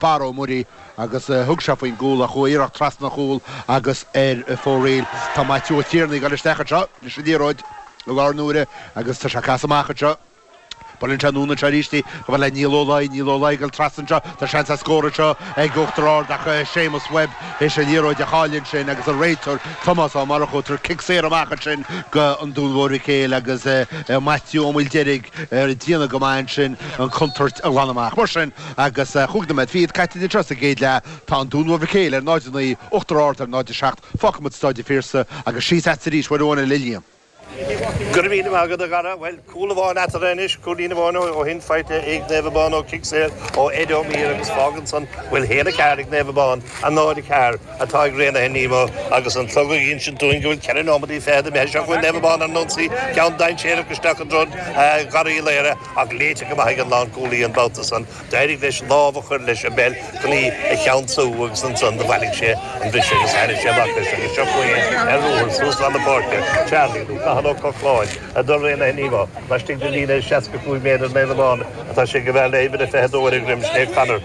barr ó Mhuirí agus thug sé faoin gcúl ach chuaigh iarracht trasna an chúil agus ar fóraoil. Tá Maitiú Ó Tiarnaigh ag dul isteach anseo leis an liathróid i láthair na huaire agus tá sé ag casadh amach anseo. Buaileann sé anonn anseo arís í chomh fada le Niall Ó Laoi. Niall Ó Laoi ag dul trasna anseo. Tá seans ar scór anseo ag Uachtar Ard ach Séamus Webb is an liathróid a chailleadh ansin agus an réiteoir Tomás Ó Murchú ag tabhairt cic saor amach ansin go An Dún Mhór Mhic Éil agus Maitiú Ó Maoildeirg ag déanamh go maith ansin an contúirt a ghlanadh amach. Mar sin. Agus cúig nóiméad fichead caite eatarthu sa gcéad leath, tá an Dún Mhór Mhic Éil ar 0, 9, Uachtar Ard ar 0, 7, fágfaidh muid Staid an Phiarsaigh agus síos leat arís, Mhaigh Eo ar an le Liam. Go raibh míle maith agat a chara. Bhuel, cúl amháin eatarthu anois, cúilín amháin ó shin faighte ag Naomh Abán ó chic saor ó Ed Ó Mír agus fágann san go bhfuil 1, 4 ag Naomh Abán, 0, 4 atá ag Raonaithe Nemo agus an clog ag insint dúinn go bhfuil ceithre neomataí fichead imithe. Seo chugainn Naomh Abán ar an ionsaí, ceann dainséarach isteach i dtreo Dharragh Uí Laoire. Ach léite go maith ag an lánchúlaí an babhta san, d'éirigh leis lámh a chur leis an bpeil chun í a cheansú agus ansan do bhailigh sé an bhris agus thairrig sé amach leis agus seo chugainn é ar ruathar suas lán na páirce, Charlie, nó Cathal Ó Cochláin, do Raonaithe Nemo. Laistigh den líne seasca cúig méadar ar an aon amháin atá sé ag a bheith le huimhir a fiche a dó ar a dhroim, sin é Conor.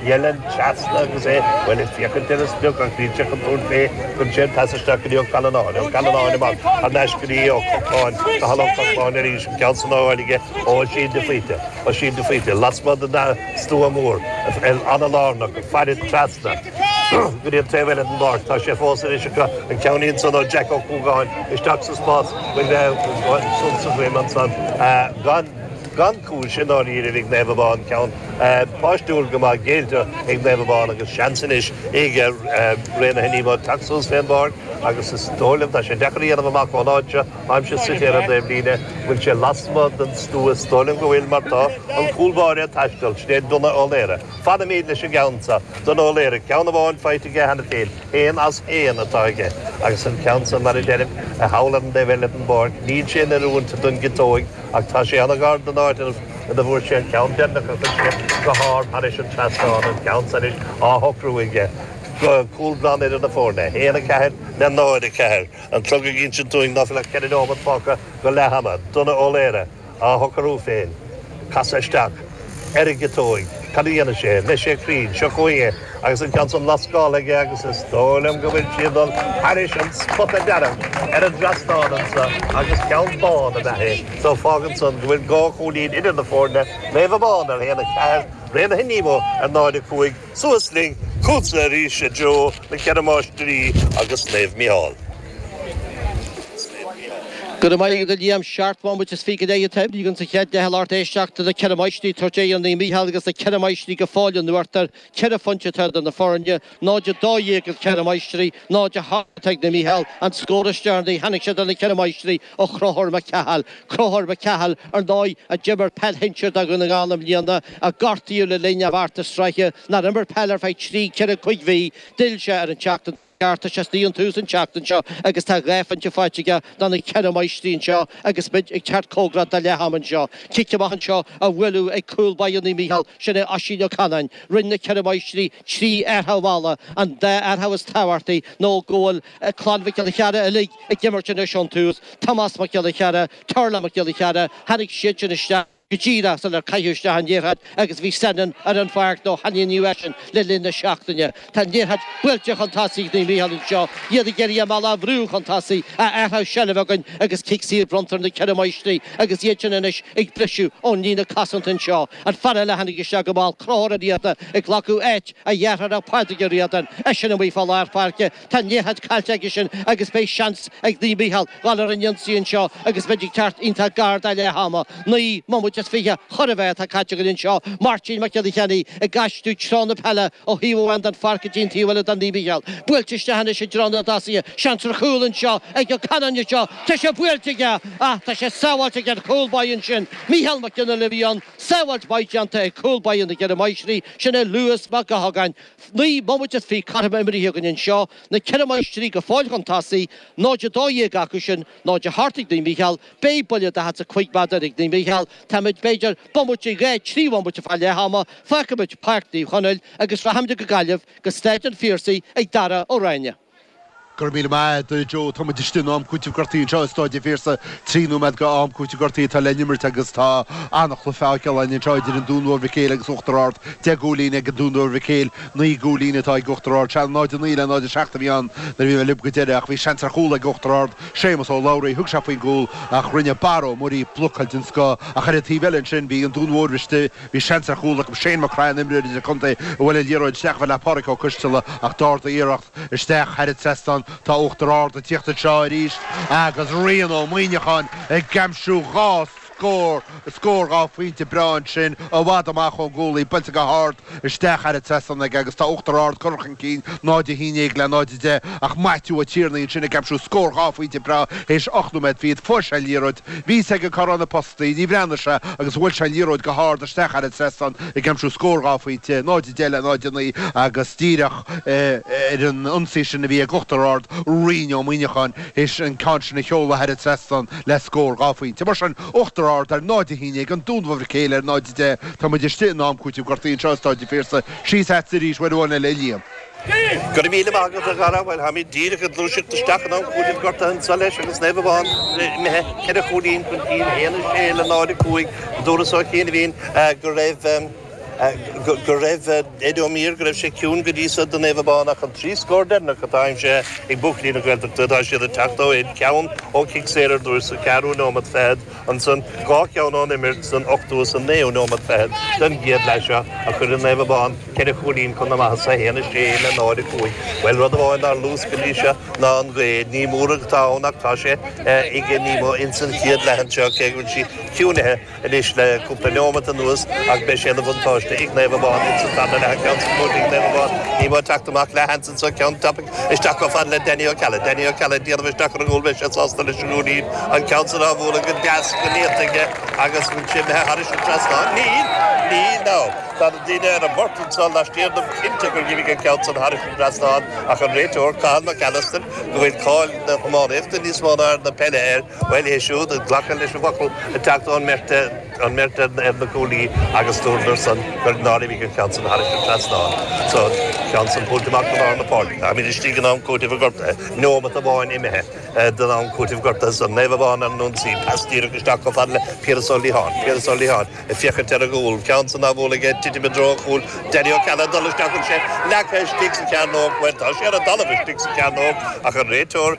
Ó Néill trasna agus é, bhuel, ag féachaint ar an sprioc ach níl sé chun tabhairt fé cuireann sé an pas isteach go dtí Ó Callanáin. Ó Callanáin amach thar n-ais go dtí Ó Cochláin, Cathal Ó Cochláin arís, an ceann san á fháil aige ó Oisín de Faoite. Oisín de Faoite lasmuigh den stua mór, an-lárnach, ag faire trasna go dtí an taobh eile den bpáirc. Tá sé fós anois acu, an ceann ansan ó Jack Ó Cuagáin isteach sa spás, brú ansan sa droim ansan, gan. Gan chúis, i ndáiríre, a bhí ag Naomh Abán, ceann páistiúil go maith géillte ag Naomh Abán agus seans anois ag Raonaithe Nemo teacht suas fén bpáirc agus is dóigh liom tá sé deacair a dhéanamh amach ón áit seo. Táimse suite ar an dtaobhlíne. An bhfuil sé lasmuigh den stua? Is dóigh liom go bhfuil mar tá an cúl báire ag taisteal. Sin é Donagh Ó Laoire. Fanaimíd leis an gceann seo. Donagh Ó Laoire, ceann amháin faighte aige cheana féin. Aon as aon atá aige. Agus an ceann seo mar a deirim, thall ar an dtaobh eile den bpáirc. Níl sé in oiriúint don gciotóig. Ach tá sé an-ghar don áit ina bhfuair sé an ceann deireanach a chuir sé go hard thairis an trasnán, an ceann san anois á shocrú aige, cúl glan idir na foirne. 1, 4 le 0, 4, an clog ag insint dúinn ná fuil ach ceithre neomat fágtha go leath-ama. Donagh Ó Laoire á shocrú féin. Casadh isteach. ar a chiotóig. Cad a dhéanfaidh sé? An mbeidh sé cruinn. Seo chugainn é agus an ceann san á lascáil aige agus is dóigh liom go bhfuil sí ag dul thairis an spota dearg ar an dtrasnán anso agus ceann bán ab ea é so fágann san go bhfuil dhá chúilín idir na foirne, Naomh Abán ar aon a ceathair, Raonaithe Nemo ar 0 a cúig. Suas linn chugatsa arís, a Joe na Ceithre Máistrí agus Naomh Mícheál. Go raibh maith agat, a Liam. Seacht mbomaite is fiche imithe insa chéad leath tar éis éisteachta na Ceithre Máistrí ag tabhairt fé dhéin Naomh Mícheál agus na Ceithre Máistrí go fóill in uachtar ceithre phointe atá idir na foirne, 0-12 do na Ceithre Máistrí, 0-8 ag Naomh Mícheál an scór is deireanaí tháinig sé do na Ceithre Máistrí ó Chonchúr Mac Cathail. Conchúr Mac Cathail ar ndóigh, a d'imir peil shinsir do Dhún na nGall i mbliana, a gortaíodh le linn an chomórtais sraithe, nár imir peil ar feadh trí, ceithre, cúig mhí. D'fhill sé an tseachtain seo chaite, tá sé istigh ón tús an tseachtain seo agus tá dhá phointe faighte aige do na Ceithre Máistrí anseo agus muid ag teacht comhgarach do leath ama anseo. Cic amach anseo á bhualadh ag cúl báire Naomh Micheál, sin é Oisín Ó Canáin. Rinne na Ceithre Máistrí trí athrach mhalla, an dá athrach is tábhachtaí nó go bhfuil Tá clann Mhic Giolla Chearra uilig ag imirt anois ón tús, Tomás Mac Giolla Chearra, Tarlach Mac Giolla Chearra, tháinig siadsan isteach go díreach sular caitheadh isteach an liathróid agus bhí Senan ar an pháirc nó ainmníodh eisean le linn na seachtaine. Tá an liathróid buailte chun tosaigh ag Naomh Micheál anseo, iad ag iarraidh an balla a bhrú chun tosaigh a athrach seilbh againn agus cic saor bronnta ar na Ceithre Máistrí agus iad sin anois ag briseadh ón líne cosanta anseo. An fear eile a tháinig isteach go mall Conchúr Ó Riadáin ag glacadh áit a dhearthára Pádraig Ó Riadáin, eisean amuigh fá lár pháirce, Tá an liathróid caillte aige sin agus beidh seans ag Naomh Micheál dhul ar an ionsaí anseo agus muid ag teacht iontach gar do leath ama. Naoi mbomaite is fiche chóir a bheith atá caite againn anseo. Máirtín Mac Giolla Cheannaigh ag aistriú treo na peile ó thaobh amháin den pháirc go dtí an taobh eile do Naomh Micheál. Buailte isteach anois i dtreo na dtosaithe. Seans ar chúl anseo ag Ó Canainn anseo. Tá sé buailte aige ach tá sé sábháilte ag an báidh ansin. Micheál Mac Giolla Lioy ann. Sábháilt mhaith déanta ag cúl báire na gCeithre Máistrí, sin é Lewis Mac Gothágáin. Naoi mbomaite is fiche caite imeartha againn anseo, na Ceithre Máistrí go fóill chun tosaigh, 0-12 acu sin, 0-8 ag Naomh Mícheál, beidh buille daichead a cúig méadar ag Naomh Mícheál, táimid, b'fhéidir, bomaite, dhá, trí bhomaite fá leath ama, fágfaimid Páirc Naomh Chonaill agus rachaimid go Gaillimh, go Staid an Phiarsaigh ag Darragh Ó Ráinne. Go raibh míle maith a'd a Joe. Táimid istigh in am cúitimh gortaí anseo i Staid a' Phiarsaigh, trí nóiméad dho am cúitimh gortaí atá le n-imirt agus tá an-chluiche á fheiceáil a'inn anseo idir an Dún Mhór Mhic Éil agus Uachtar Ard. Deich gcúilín ag an Dún Mhór Mhic Éil, naoi gcúilín atá ag Uachtar Ard. Sea, 0-9 le 0-7 a bhí ann nuair a bhí mé libh go deireadh ach bhí seans ar chúl ag Uachtar Ard, Séamus Ó Labhraí, thug sé faoin gcúl ach rinne Barra Ó Muirí blocáil den scoth ach ar an taobh eile ansin bhí an Dún Mhór istigh Bhí seans ar chúl acu, Shane McCryan, imreoir idir-chontae a bhuail an liathróid isteach i mbéal Pádraig Ó Coistealla ach d'ardaigh a iarracht isteach thar an trasnán. Tá Uachtar Ard ag tíocht anseo arís agus Rian Ó Muíneacháin ag aimsiú dhá scór, scór dhá phointe breá ansin i bhfad amach ón gcúl í buailte go hard isteach thar an trasnán aige agus tá Uachtar Ard curtha chun cinn 0-11 le 0-10 ach Maitiú Ó Tiarnaigh ansin ag aimsiú scór dhá phointe breá th'éis ocht nóiméad fichead. Fuair sé an liathróid. Bhí a fhios aige cá raibh na postaí, níor bhreathnaigh sé agus bhuail sé an liathróid go hard isteach thar an trasnán ag aimsiú scór dhá phointe, 0-10 le 0-9 agus díreach ar an ionsaí sin a bhí ag Uachtar Ard, Ryan Ó Muineacháin théis an ceann sin a sheoladh thar an trasnán le scór dhá phointe. Mar sin, Uachtar Ard ar 0-11 An Dún Mór Mhic Éil ar 0-10. Tá muid istigh in am cúitimh gortaithe anseo i Staid an Phiarsaigh. Síos agatsa arís uair amháin eile, a Liam. Go raibh míle maith agat, a chara. Bhuel, táimid díreach ag gluaiseacht isteach in am cúitimh gortaithe anso leis agus Naomh Abán imithe ceithre chúilín chun cinn, 1, 6 le 0, 5. Dúras ó chianaibhín go raibh, go raibh, Ed Ó Mír, go raibh sé ciúin go dtí so do Naomh Abán ach an trí scór deireanach atá aimsithe ag buachaillí na Gaeltachta tá siad ag teacht ó cheann ceann ó chic saor ar dtús sa cheathrú nóimeat fichead Ansan, dhá cheann ón imirt san ochtú is an naoú nóiméad fichead den gcéad leath seo a chuireann Naomh Abán ceithre chúilín chun na maitheasa a haon a sé le náid a cúig. Bhuel, rud amháin nár luas go dtí seo ná an ghaoth. Ní mór atá ann ach tá sé ag Nemo ins an chéad leath anseo cé go bhfuil sí ciúinithe anois le cúpla neomat anuas ach beidh sé ina bhuntáiste ag Naomh Abán ins an tarna leath ceann sa chúirt ag Naomh Abán Nemo ag teacht amach leis ceann tapaidh isteach chomh fada le Danny Ó Ceallaigh. Danny Ó Ceallaigh ag déanamh isteach ar an gcúl, beidh sé sásta leis an gcúilín, an ceann san á bhualadh go deas, go néata aige agus san imithe thairis an trasnán. Níl! Níl, nó! Tá na daoine ar an bport anso laistiar dom cinnte gur dh'imigh an ceann san thairis an trasnán ach an réiteoir, Cathal Mac Allister, go bhfuil cáil na hiománaíochta níos mó ná ar na peile air, bhuel é siúd ag glacadh leis an bhfocal ag teacht ón mbeirt an mbeirt ar na cuaillí agus dúradar san nár imigh an ceann san thairis an trasnán so ceann san thabhairt amach go lár na páirce. Táimíd istigh in am cúitimh gortaithe, neomat amháin imithe den am cúitimh gortaithe san, Naomh Abán ar an ionsaí, pas díreach isteach chomh fada le Piaras Ó Liatháin, Piaras Ó Liatháin ag féachaint ar a gcúl, ceann san á bhualadh aige, titim i dtreo a chúil, Danny Ó Ceallaigh ag dul isteach, tá sé leagtha istigh sa chearnóg, bhuel tá sé ar an dtalamh istigh sa chearnóg ach an réiteoir,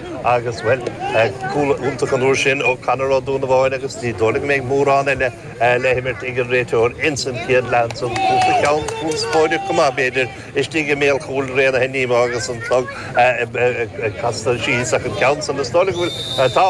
Agus blocáil iontach an uair sin ó Conor Ó Donnabháin agus ní dóigh liom go mbeidh mórán eile le himirt ag an réiteoir ins an chéad leath ansan. Cúpla ceann conspóideach go maith, b'fhéidir, istigh i mbéal chúil Raonaithe Nemo agus an clog ag casadh síos ach an ceann san is dóigh liom go bhfuil, tá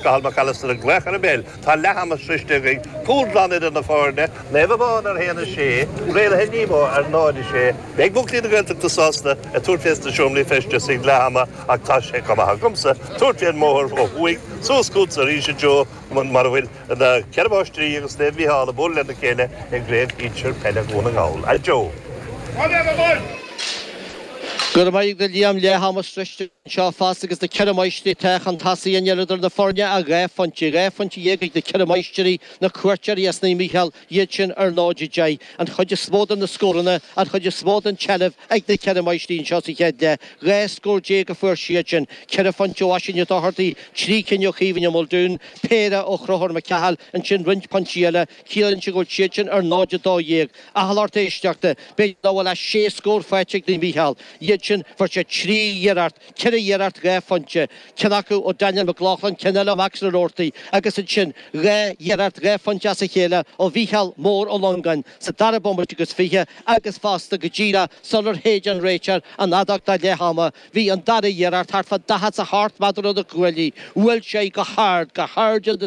Cathal Mac Alastair ag glaoch ar an bpeil, tá leath ama sroiste againn, cúl glan idir na foirne, Naomh Abán ar a haon a sé, Raonaithe Nemo ar náid a sé. Beidh buachaillí na Gaeltachta sásta ag tabhairt fés na seomraí feistis ag leath ama. Ach tá sé chomh maith agamsa tabhairt fén mbóthar ó thuaidh suas chughat-sa arís a Joe mar a bhfuil na Ceithre Máistrí agus Naomh Mícheál ag bualadh le na chéile i gCraobh Shinsir Peile Dhún na nGall. A Joe. Go raibh maith agat Liam, leath ama sroiste anseo fosta agus na Ceithre Máistrí atá chun tosaigh, níl idir na foirne ach dhá phointe, dhá phointe dhéag ag na Ceithre Máistrí, na cuairteoirí as Naomh Mícheál. iad sin ar náid a deich, an chuid is mó de na scóranna, an chuid is mó den tseilbh ag na Ceithre Máistrí anseo sa chéad leath, dhá scór déag a fuair siad sin, ceithre phointe ó Oisín Ó Dochartaigh, trí cinn ó Chaoimhín Ó Maoldúin, péire ó Chonchúr Mac Cathail, ansin roinnt pointí eile, ciallaíonn sin go bhfuil siad sin ar náid a dó dhéag. A lucht éisteachta, b'fhéidir nach bhfuil ach sé scór faighte ag Naomh Mícheál, iad sin, fuair siad trí iarracht, 4 iarracht dhá phointe, ceann acu ó Daniel McLaughlin, ceann eile ó Max na Roarty agus ansin dhá iarracht dhá phointe as a chéile ó Mhícheál Mór Ó Longáin sa dara bomaite agus fiche agus fosta go díreach sular shéid an réiteoir an fheadóg do leath ama bhí an dara iarracht thart fá daichead a seacht méadar ó na cuaillí bhuail sé go hard, go hard in the.